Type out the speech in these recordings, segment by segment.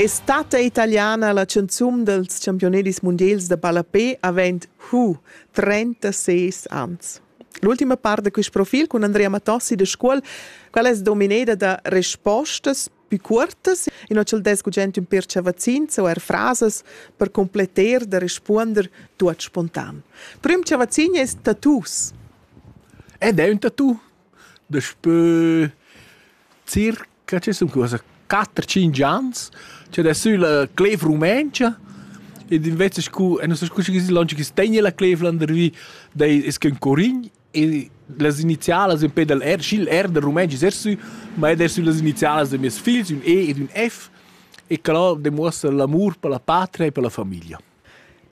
Estate italiana la canzun dels championedis mundials da ballapé avent hu 36 ans. L'ultima part da quist profil cun Andrea Matossi da Scuol, qual es domineda da respostas più cuortas e non c'el dess gugent ün pircha vaccins o er frasas per completter da respuonder tuot spontan. Prüm cha vaccin es tattoos. Ed è ün tattoo daspö circa Que che sun quella quatter tschinch ans chi ad es sülla clev rumentscha ed invece scu e nu so scu schi chi longe chi's tegna la clev landervi dai es que ün curign e las inizialas ün pe dal R sch'il R dal rumentsch es er sü ma ed er sü las inizialas da mieus figls ün E ed ün F e que là demuossa l'amur per la patria e per la famiglia.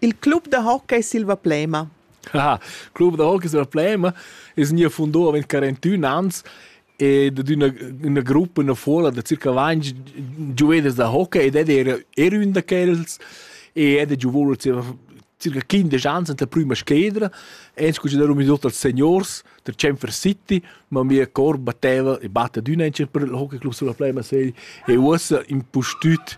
Il club da hockey Silva Plema. Ah, club da hockey Silva Plema es gnü fundà avant 41 ans ed d'üna üna gruppa üna fuola da circa 20 giuveders da hockey ed ed era era ün da quels e ed ha giovù circa 15 ans anta prüma scledra e ens considerum i tuot als seniors der Chamfer City, ma mia cor batteva e batta d'üna per il hockey club Silva Plema sei e uossa impustüt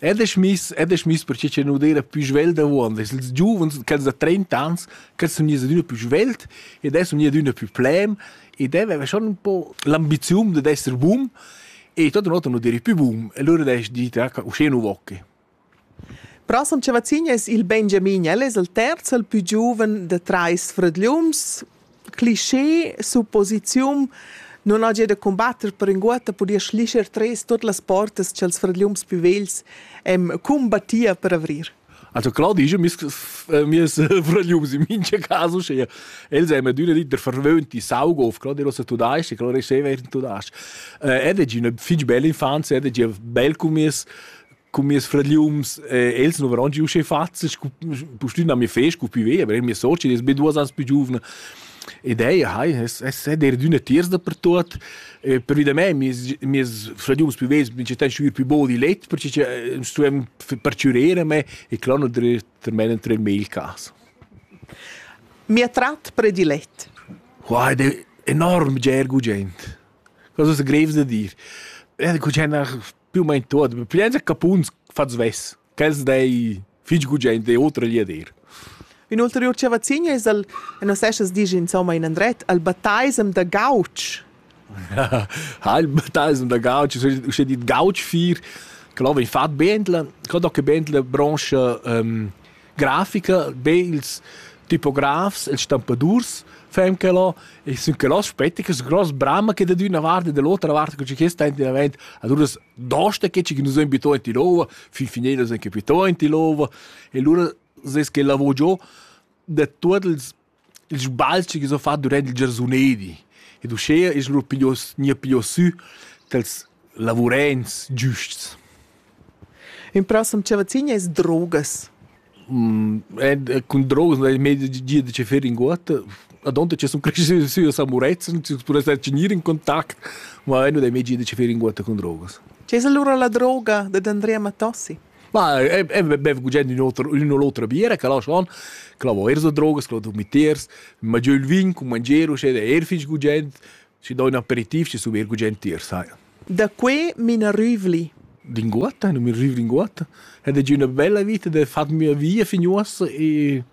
Ed es miss, ed es miss perche cha nu d'eira pü svelt avuond. Es ils giuvens, quels da trenta ans, quels sun gnits adüna pü svelt ed els sun gnits adüna pü plem ed el aveva schon ün po l'ambiziun dad esser bun e tuot in ota nu direi pü bun. E lura l'he dit, ah, uschè nu vo que. Prossem Chavazin es il Benjamin, el es il terz, il pü giuven da trais fradgliuns. cliché, supposiziun, non hagia da combatter per inguotta podia schlischer tres tot las portas ch'els fradgliums più vegls em combattia per avrir. Also klar, die ist ja mir Frögliums in mincha caso schea. Els haben adüna dit der verwöhnte Saug auf, gerade was du da hast, klar ist sehr während du da hast. Er hat eine fitch belle Infanz, er hat ein bel Kummis, Con mes fragliums, eh, els non varon giu sche fazza, scu pustün a mi fe, scu pi ve, aber mia socia, die ist mit duas ans più giovane. Ed ei, hai, es, es è der d'una tiers dappertut. Eh, per vida mei, mes, mes fragliums più vesi, mi ci tan sciur più bol di let, perché ci eh, stuem perciurere me e clono der termenen tre mail cas. Mi ha trat predilet. Wow, ed è enorm gergo gent. Cosa è greves da dir. Eh, cu c'è una più o meno tuot, plienza capuns fat svess, ch'els dei fich gugent e otra lia dir. Ün ulteriur chavazin es al, nos esas disch insomma in andret, al Bataisem da Gauch. ha il Bataisem da Gauch, uschè dit Gauch 4, che là vegn fat Bentla, che da che Bentla brancha, ähm, grafica, be ils tipografs, ils stampadurs fan quello e sun quello aspetta che gross brama che da d'una vart e dall'otra vart che che sta in davent allora dosta che ci nus abito in Tirova fin fine nus anche abito in Tirova e allora ses che lavoro giù da tutti ils Il sbalzi chi s'ho fat durant il giarsunedi ed uschea es lur piglios gnir piglios sü dals lavurents giusts. In prossem chavazzin es drogas. cun drogas no es mei gia da che fer inguotta. Adonta che sun creschü sü a Samurezzan, chi pudess star cun gnir in contact, ma nu dai mei gia da che fer inguotta cun drogas. Chi es allura la droga dad Andrea Matossi? Ma e e bev gugent ün oter ün u l'otra biera che lascha on che la vo eir so drogas, che la do mitters, mangià ün vin cun mangier uschè ed eir fich gugent, schi do ün aperitiv, schi sun eir gugent tier, sai. Da que m'ina rüvli. Linguotta, nu mi rüv linguotta. Ed è già üna bella vita da fat mia via fin uossa e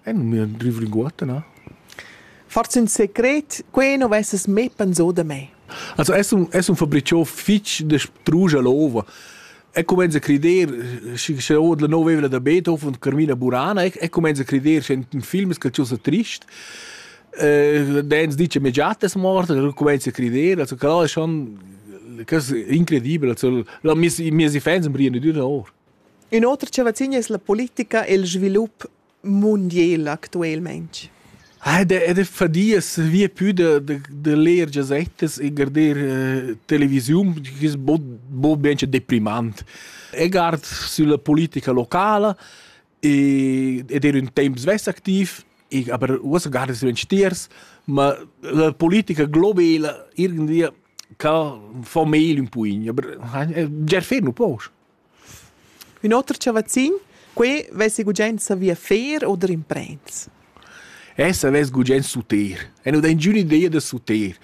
e nu mi rüv linguotta, na? Forse ün secret, que non vesses mê pensà da me. Also es un es un fabriciò fich da strusch a l'ova. e comenza a crider schi sche ord la nova evla da Beethoven und Carmina Burana e, e comenza a crider sche in film che ciò sa trist eh dens dice me già te morta e comincia a credere also gerade ist schon das ist incredibel also la mis mis fans am riene di ora Inoltre, ce vacina es la politica e il svilup mundiel actuelmaing? Ed è fadia via più da, da, da leer gazettas e guardar uh, televisiun, che è bo ben deprimant. E guard sulla politica locale e, ed era un tempo svess activ, e, aber uossa guarda su tiers, ma la politica globale irgendwie kann von mehl un puin, aber ger fer nu poch. Ün oter chavazzin, quai vess gugent savì fer oder imprends. Essa vess gugent suter. E nu dà ingüna idea da suter.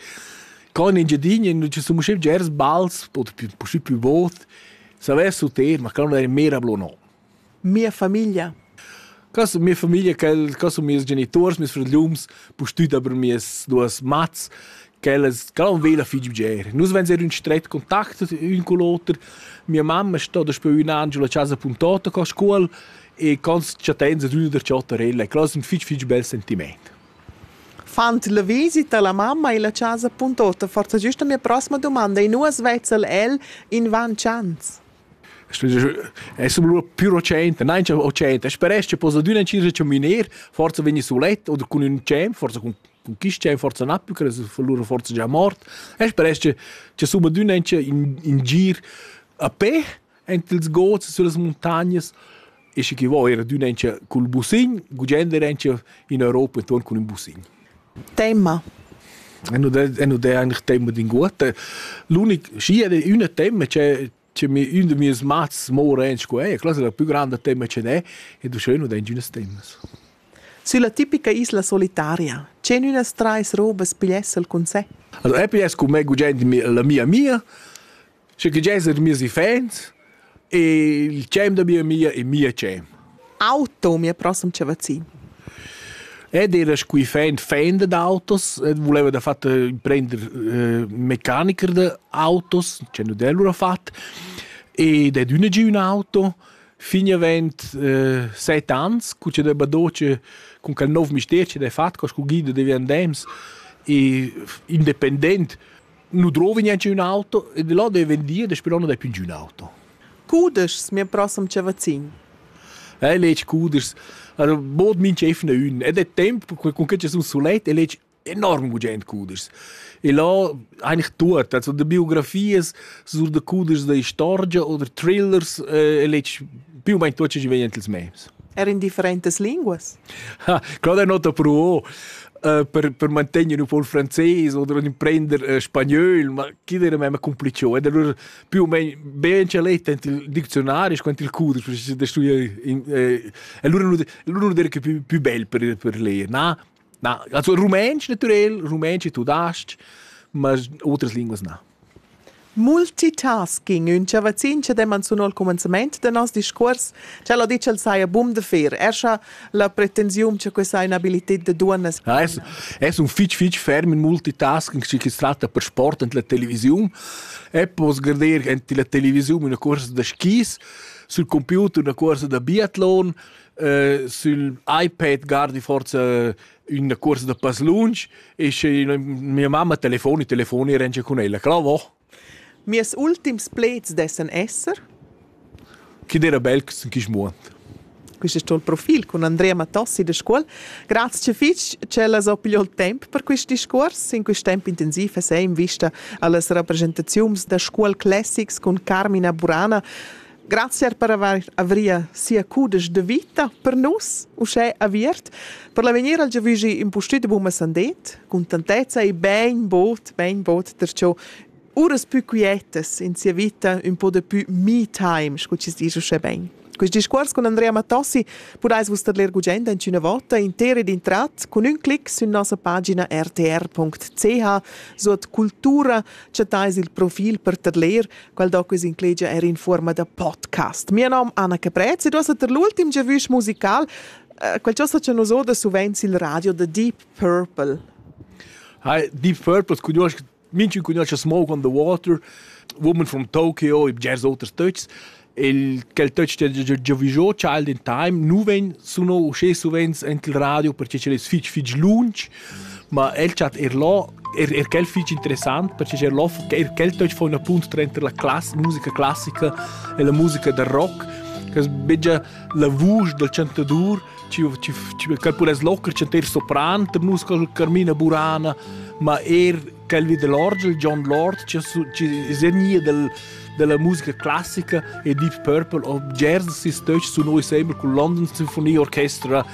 Co in Engiadina nu ci sun usché bgers bals o puscü plü bod, savess suter, ma quel non è mera blo no. Mia famiglia Cos mia famiglia, quel, cos sun mieus genituors, mieus frögliuns, pustüt aber mieas duos mats, quellas, quel han vela fich bger. Nus vainser ün stret contact ün cun l'oter. Mia mamma sto daspö ün an giù la chasa puntota co scuol e cons chattains ad üna der chattarella e quel es ün fich fich bel sentimaint. Fand la visita la mamma illa chasa puntota forsa güsta mia prossima dumanda e nus vezza'l el invan chans. è sum lur più recente, nein c'è recente, speresch che possa düna ci recominer, forza vegni sulet oder cun ün cem, forza cun cun chi cem forza na più che fa lur forza già mort e speresch che che suma düna in in gir a pe ent ils gods sulle montagnes e sche chi vo era d'ün encha cul busin, gugent er encha in Europa intuorn cun ün busin. Tema. E nu d'è, e nu d'è eigentlich tema d'inguotta. L'unic, schi è üna tema c'è, c'è mi, ün de mieus mats moren sco è, classe è la più grande tema c'è è, e du schön nu d'è ingünas temas. Sülla tipica isla solitaria, c'en ünas trais robas pigliessel cun sé? Also, Apple es cu me gugent la mia mia, Schi che gesa da meis iffaints, il tschem da mia amia e mia tschem. Auto, mia prossima chavazin. Ed era scu iffaint fan dad autos, ed vuleva da fatta prender eh, meccaniker da autos, c'è nu d'el lura fat, ed ed üna gi ün auto, fin avent eh, set ans, cu c'è da badoce cun quel nov mister che d'he fat, co scu guida devi andems, e independent nu drovi gnanc ün auto e da là deve dir daspö l'on non dai più giù ün auto. Cudeschs mia prossem chavazin. Eh, legg cudeschs. Allora, bod minch efna ün. Ed è temp, con che ci sun sulet e legg enorm gugent cudeschs. E là eigentlich tut. Also de biografies sur de cudeschs da istorgia oder thrillers eh, e legg più o meno tot ce ci vegn ins memes. Er in differentes linguas? Ha, claro, è nota pro. äh, per, per mantegner un po' il francese oder imprender äh, spagnol, ma chi era même complicio. Ed allora più o meno ben c'è letto il dizionario, quanto il codice per da studiare. Eh, allora l'uno era che più, più bel per, per leer, na? Na, also Rumänisch natürlich, Rumänisch e tudasc, mas outras línguas não. Multitasking, ün chavazzin cha demman sun al cumanzamaint da noss discuors, tschel ha dit ch'el saja bun da fer. Er scha la pretensiun cha questa ha ün'abilited da duonnas Ja, es, es un fich fich ferm in multitasking, schi chi's tratta per sport ant la televisiun. E poss garder ant la televisiun üna cuorsa da skis, sül computer üna cuorsa da biatlon, äh, sül iPad gardi forza üna cuorsa da pass lunsch e sche mia mamma telefoni telefoni e rengia cun ella cla vo Mies ultims pleds dessan esser Chi d'era bel chi smuant Quist es tuo profil cun Andrea Mattossi da Scuol. Grazcha fich ch'ella s'ho pigliò il temp per quist discuors. In quist temp intensiv esa in vista a las rappresentaziuns da Scuol Classics cun Carmina Burana. Grazie per avair avria sia cudesch de vita per nus, uschè aviert, per l'avegnir al giavügi impustüt buma sandet, contentezza e ben bod, ben bod perciò uras pü quietas in sia vita, un po de pü me time, scu ci dice uschè ben. Quest discuors con Andrea Mattossi podais vus ler gugent in una volta intera ed intrat con un clic su nossa pagina rtr.ch, suot cultura, chattais il profil per ter ler quel doc es inclegia er in fuorma da podcast. Mio nom Anna Caprez ed ossa ter l'ultim giavüsch musical uh, quel chosa cha nus oda suvenz il radio The Deep Purple. Hi, Deep Purple cunosc minchun cunosce Smoke on the Water, woman from Tokyo, i bgers oters töchs. Il quel töch che già vigiò Child in Time, nu ven suno usce suvenz ent il radio perché ce es fich fich lunch Ma el chat er là er, er quel fich interessant, perche er là, er quel töch fa ün appunt tranter la class, musica classica e la musica da rock, che es bger la vusch dal chantadur, ci ci ci quel pudess locher chanter sopran, der musica Carmina Burana, ma er quelvi dell'orgel John Lord ci ci segnia del della musica classica e Deep Purple of Jersey sis töch sun oi sembel cun London Symphony Orchestra